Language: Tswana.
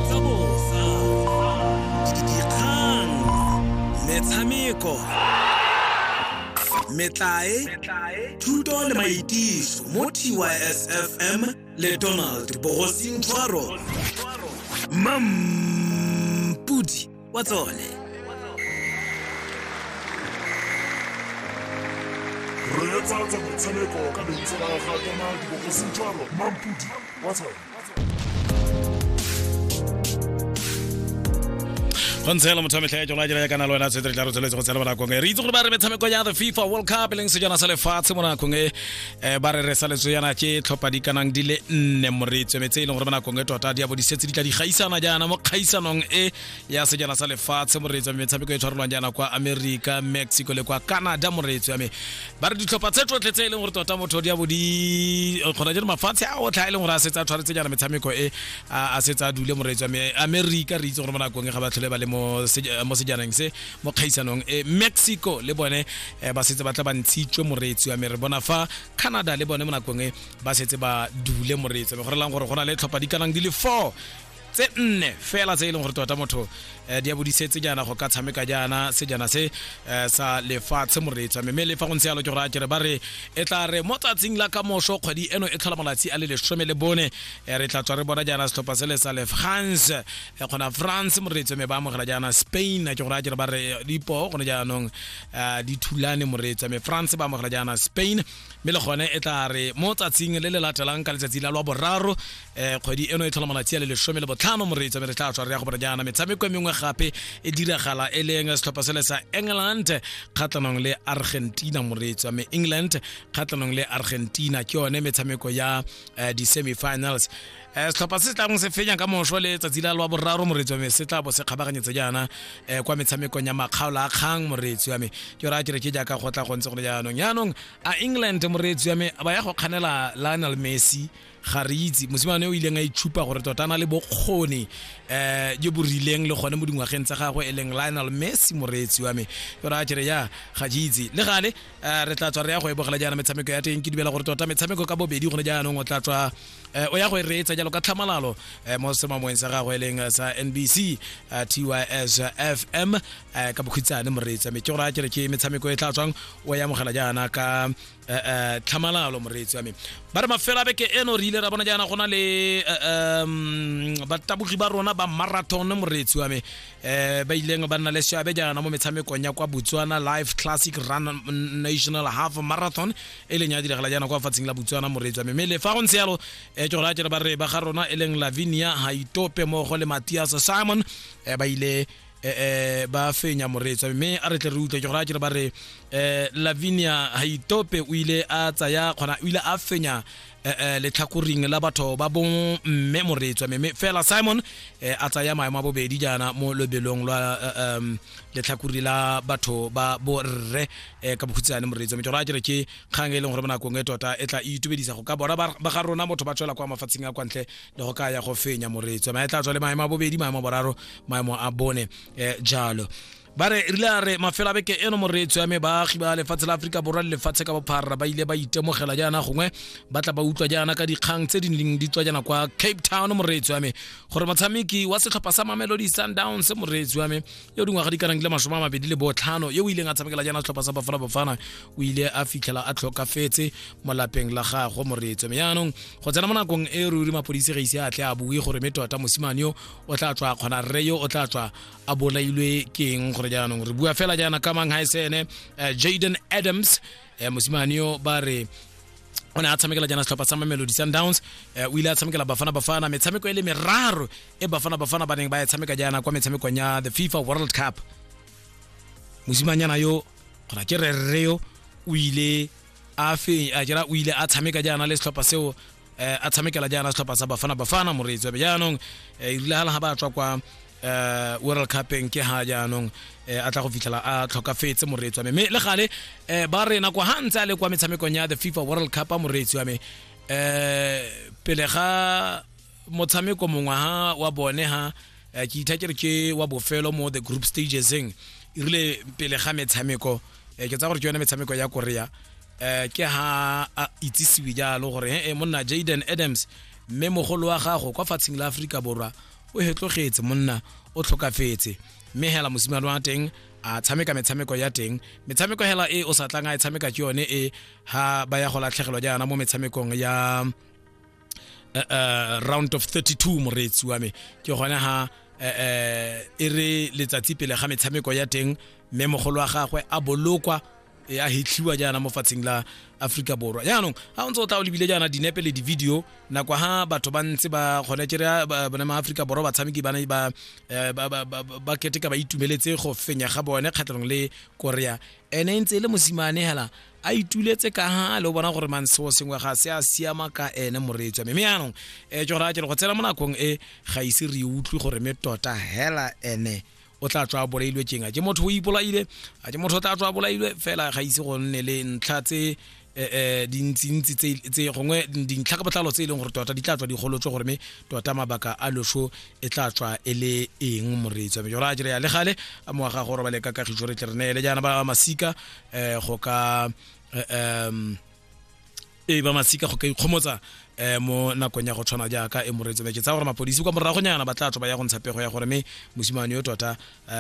tsa bosa dikgang metshameko metlae thuto le maitiso mo tysfm le donald bogosintwaro mampudi wa tsone reetsa tsa motshameko ka lentswe la gatona dibogosing jalo mampudi wa tsone go ntse fela motho wa metlha ya jolo a dira ya kana le wena tshwetse re tla re tsweletse go tsena mo nakong e re itse gore ba re metshameko ya the fifa world cup e leng sejana sa lefatshe mo nakong e um ba re re saletswe yana ke tlhopha di kanang di le nne moreetswe metse e leng gore banakong e tota di ya bo di setse di tla di gaisana jaana mo kgaisanong e ya sejana sa lefatshe moreetswe me metshameko e tshwarelwang jaana kwa america mexico le kwa canada moreetswe ya me ba re ditlhopha tse tlotlhe tse e leng gore tota motho di ya bo di kgona jere mafatshe a otlha e leng gore a setse a tshwaretse jaana metshameko e a setse a dule moreetswe me america re itse gore mo nakong e ga ba tlhole ba le mo sejaneng se mo kgaisanong e mexico le bone eh, ba setse ba tla ba ntshitswe moreetsi wa me re bona fa canada le bone mo nakong e ba setse ba dule moreetsi go relang gore go na le tlhopha di kanang di le four tse nne fela tse e leng gore tota motho eh, di a bodisetse jaana go ka tshameka jaana sejana se eh, sa lefatshe moreetsa mme mme le fa go ntse yalo ke gore a kere ba re e tla re mo tsatsing la kamoso kgwedi eno e tlhola malatsi a le lesome le bone eh, re tla tswa re bona jaana setlhopha se le sa le france kgona france moreetsa mme ba amogela jaana spain ke gore a kere ba re dipo gone jaanong uh, dithulane moreetsa me france ba amogela jaana spain mme le gone e tla re mo tsatsing le le latelang ka letsatsi la lwa boraro um kgwedi eno e tlhola malatsi a le lesome le botlhano moreetsa me re tla tswa re ya go bona jaana metshameko e mengwe gape e diragala e leng setlhopha sele sa england kgatlhanong le argentina moreetsa me england kgatlhanong le argentina ke yone metshameko ya uh, di-semifinals um setlhopha se se tlang se fenya ka moso le tsatsi la lwa boraro moretsi wa me se tla bo se kgabaganyetse jaana um kwa metshamekong ya makgaolo a kgang moretsi wa me ke raya kere ke jaaka go tla go ntse go le jaanong jaanong a england moretsi wa me ba ya go kganela lionel messi ga re itse mosimane o ileng a itshupa gore tota na le bokgoni um jo bo rileng le gone mo dingwageng tsa gagwe e leng lionel messi moreetsi wa me ke raya kere ya ga ke itse le gale um re tla tswa re ya go e bogela jaana metshameko ya teng ke dumela gore tota metshameko ka bobedi gone jaanong o tla tswa eh, o ya go e reetsa jalo ka tlhamalalo eh, mo semamoeng sa gagwe e leng eh, sa nbc eh, tys fm eh, ka bokhutshane moreetsi ame ke gore a kere ke metshameko e tla tswang o e amogela jaana ka eh, eh, tlhamalalo moreetsi wa me ba re mafelo a beke eno re ile ra bona jaana go na le eh, em, batabogi ba rona ba marathon moreetsi wa me eh, ba ileng ba nna le seabe jaana mo metshamekong ya kwa botswana live classic run national half marathon e leng ya diragala jaana kwa fatsheng la botswana moreetsi wa me mme le fa go ntse yalo um ke go raya kere ba re ba ga rona e leng lavinia haitope mogo le matias simon um ba ile eh ba fenya moreetsi wa me mme a re tle re utlwe ke go raya kere ba re um lavinia haitope o ile a tsaya kgona o ile a fenya eh, eh, letlhakoring la batho ba bong mme moretswa mme fela simon eh, a tsaya maemo a bobedi jaana mo lobelong lwa eh, um, letlhakori la batho ba borre eh, ka bokhutsane moretswa mme a kere ke kgang e leng gore mo nakong e tota e tla e itumedisa go ka bona ba ba ga rona motho ba tswela kwa mafatsheng a kwa ntle le go ka ya go fenya moretswa mme e tla tswa le maemo a bobedi maemo a boraro maemo a bone eh, jalo ba re rile a re mafelo a beke eno moreetso ya me baagi ba lefatshe la aforika borwa le lefatshe ka bophara ba ile ba itemogela jaana gongwe ba tla ba utlwa jaana ka dikgang tse di neng di tswa jaana kwa cape town moreetso ya me gore motshameki wa setlhopha sa mamelodi sundowns moreetso ya me yo dingwaga di ka nang le masome a mabedi le botlhano yo o ileng a tshamekela jaana setlhopha sa bafana bafana o ile a fitlhela a tlhokafetse mo lapeng la gagwe moreetso me yaanong go tsena mo nakong e ruri mapodisi ga ise a tle a bue gore me tota mosimane yo o tla tswa kgona rre yo o tla tswa a bolailwe ke eng gore jaanong re bua fela jaana ka mang ga ese ene eh, jaden adams eh, mosimane yo ba re o ne a tshamekela jana setlhopha sa mamelodi sundowns eh, o ile a tshamekela bafana bafana metshameko e le meraro e bafana bafana ba neng ba e tshameka jana kwa metshamekong ya the fifa world cup mosimanyana yo kgona ke rerre yo o ile a fe a kera o ile a tshameka jana le setlhopha seo eh, a tshamekela jaana setlhopha sa bafana bafana moreetsi wa jaanong eh, erile ga ba tswa kwa eh, world cupeng ke ha jaanong eh, a tla go fitlhela a tlhokafetse moreetsi wa me mme le gale eh, ba rena kwa ha ntse a le kwa metshamekong ya the fifa world cup a moreetsi wa me eh, pele ga motshameko mongwe ha wa bone ha eh, ke itha kere ke wa bofelo mo the group stageseng e rile pele ga metshameko eh, ke tsa gore ke yone metshameko ya korea eh, ke ha a itsisiwe jalo gore e monna jaden adams mme mogolo wa gago kwa fatsheng la aforika borwa o hetlogetse monna o tlhokafetse mme hela mosimane wa teng a tshameka metshameko ya teng metshameko hela e o sa tlang a e tshameka ke yone e ha ba ya go latlhegelwa jaana mo metshamekong ya uh, uh, round of 32 moreetsi wa me ke gone ha uh, uh, e re letsatsi pele ga metshameko ya teng mme mogolo wa gagwe a bolokwa e a hitlhiwa jaana mo fatsheng la aforika borwa jaanong ga o ntse o tla o lebile jaana dinepe le di-video nako ga batho ba ntse ba gone kere bone ma aforika borwa batshameki ba ne ba eh, ba keteka ba itumeletse go fenya ga bone kgatlhanong le korea ene e ntse e le mosimane hela a ituletse ka ha le o bona gore man seo sengwe ga se a siama ka ene moreetso mme yaanong um ke gore a ke go tsena mo nakong e ga ise re utlwe gore mme tota hela ene o tla tswa bolailwe keng a ke motho o ipolaile a ke motho o tla tswa bolailwe fela ga ise go nne le ntlha tse um dintsintsi tse gongwe dintlha ka botlalo tse e leng gore tota di tla tswa di golotse gore mme tota mabaka a loso e tla tswa e le eng moreetso mme jora jere ya le gale a moaga gore ba le ka kagiso re tle re neele jaana ba masika eh go ka um e ba masika go ka ikgomotsa eh mo nakong ya go tshwana jaaka e moretse ke tsa gore mapodisi kwa moragonyana ba tla tso ba ya go ntsha pego ya gore me mosimane yo tota eh, a